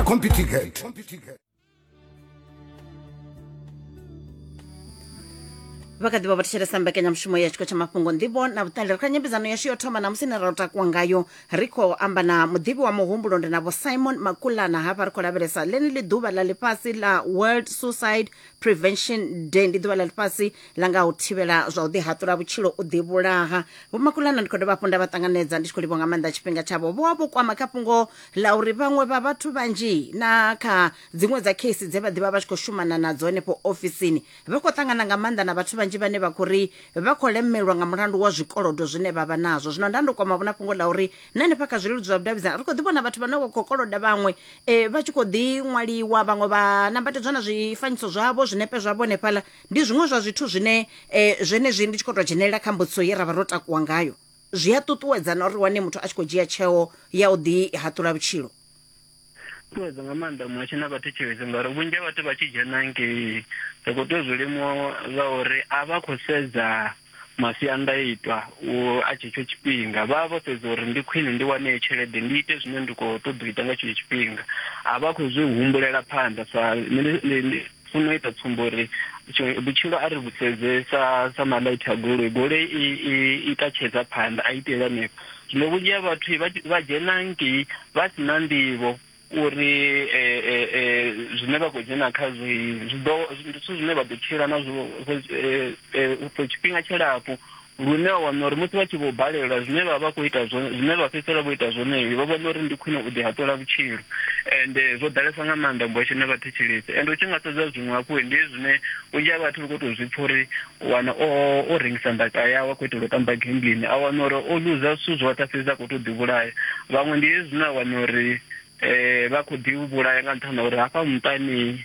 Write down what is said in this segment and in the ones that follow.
Computigate. vha kha ḓi vha vho thetshelesa mbekanyamushumo ya tshiko tsha mafhungo nḓivho na vhuṱali ri kha nyambedzano yashu yo thoma namusi ne ra u takuwa ngayo ri khou amba na muḓivhi wa muhumbulo ndi na vho simon makulana hafha ri khou lavhelesa ḽeneḽi ḓuvha ḽa ḽifhasi ḽa world suicide prevention day ndi ḓuvha ḽa ḽifhasi ḽa nga u thivhela zwa u ḓihaṱula vhutshilo u ḓivhulaha vho makulana ndi khou dovha hafhu nda vha ṱanganedza ndi tshi khou livha nga maanḓa tshifhinga tshavho vho vha vho kwama kha fhungo ḽa uri vhaṅwe vha vhathu vhanzhi na kha dziṅwe dza kheisi dze vha ḓivha vha tshi khou shumana nadzo henefho ofisini vha khou ṱangana nga maanḓa na vhathu vhanzhi vhane vha khou ri vha khou lemelwa nga mulandu wa zwikolodo zwine vha vha nazwo zwino nda ndo kwama vhona fhungo ḽa uri na hanefha kha zwileludzi zwa vhudavhidzana ri khou ḓi vhona vhathu vhane vha khou koloda vhaṅwe um vha tshi khou ḓi ṅwaliwa vhaṅwe vha nambatedzwa na zwifanyiso zwavho zwinepe zwavho hanefhaḽa ndi zwiṅwe zwa zwithu zwine um zwenezwi ndi tshi khou tou dzhenelela kha mbudziso ye ra vha ro takuwa ngayo Zwi a ṱuṱuwedza na uri wane muthu a tshi khou dzhia tsheo ya u ḓihaṱula vhutshilo. Ṱuṱuwedza nga maanḓa muhasho na vhathetshelesi ngauri vhunzhi ha vhathu vha tshi dzhena ngei ri khou tea u zwi limuwa ngauri a vha khou sedza masiandaitwa a tshetsho tshifhinga vha vha vho sedza uri ndi khwine ndi wane tshelede ndi ite zwine ndi khou ṱoḓa u ita nga tshetsho tshifhinga a vha khou zwi humbulela phanḓa sa funa u ita tsumbo uri vhutshilo a ri vhusedze sa sa malaiti a goloi goloi i i i tatshedza phanḓa a itela hanefho zwino vhunzhi ha vhathu vha dzhena ngei vha si na nḓivho uri eh, eh, eh, zwine vha khou dzhena khazwo zwithu zwine vha ḓo tshila nazwo for tshifhinga tshilapfu Lune a wana uri musi vha tshi vho balelwa zwine vha vha khou ita zwone, zwine vha fhedzisela vho ita zwone, vho vhona uri ndi khwine u ḓihaṱula vhutshilo. Ende zwo ḓalesa nga maanḓa ngwesho na vhathetshelesi. Ende u tshi nga sedza zwiṅwe hafhu, ndi hezwi zwine vhunzhi ha vhathu vha khou tou zwi pfa uri u wana o, o rengisa ndaka yawe a khou itela u tamba gambling, a wana uri o luza zwithu zwoṱhe a fhedza a khou tou ḓivhulaya. Vhaṅwe ndi hezwi zwine a wana uri vha khou ḓivhulaya nga nṱhani ha uri hafha muṱani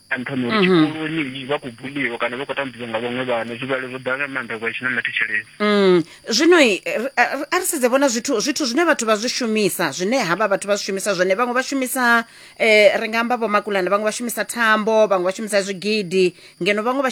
a nṱhani uri mhm. tshikoloni vha khou buliwa kana vha khou tambudzwa nga vhaṅwe vhana zwivhalo zwo ḓala nga maanḓa kwa tshi na mathetsheleni mm. zwino a ri sedze vhona zwithu zwithu zwine vhathu vha zwi shumisa zwine havha vhathu vha zwi shumisa zwone vhaṅwe vha shumisa um ri nga amba vhomakulana vhaṅwe vha shumisa thambo vhaṅwe vha shumisa zwigidi ngeno vhaṅwe vha